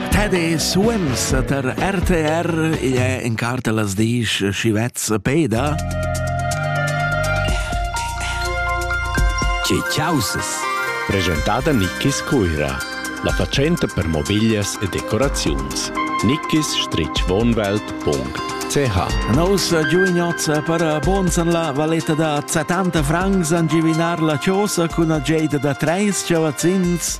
Teddy Swims tar RTR igl è in carta las disch Schivez Peda. Tge chausas? Presentada Nickis Cuira, la fatschenta per mobiglias e decoraziuns. nickis-wohnwelt.ch Nos giugnozz per buns en la valetta da 70 francs angivinar la chosa cun a geida da treis chavazzins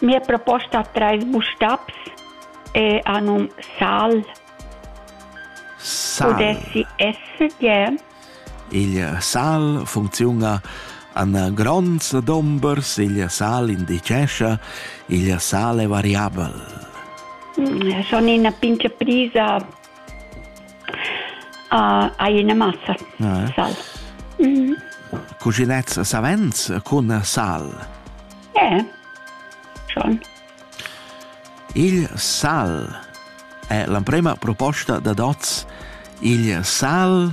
Mia proposta ha trais bustabs e ha num Sal. Sal. Pudessi esser gie. Il sal funcziuna an gronds dombers, il sal indicescia, il sal è variabel. Mm, schon ina pince prisa Hai ina massa ah, sal. Mm. Cuginets savens cun sal? Eh, schon. Il sal è l'emprema proposta da Dots. Il sal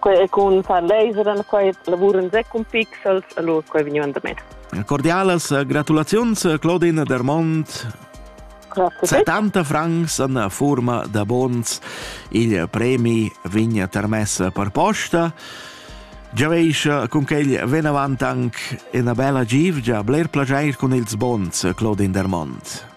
Quei è cun fundraiser, quei lavuran sec cun pixels, allora quei vegnivan da me. Cordialas eh, gratulaziuns, eh, Claudine Dermont. 70 francs in forma da bons il premi vigna termess per posta. Già veis eh, con quel ven avant anche una bella givgia, bler plagiair con ils bons, Claudine Dermont.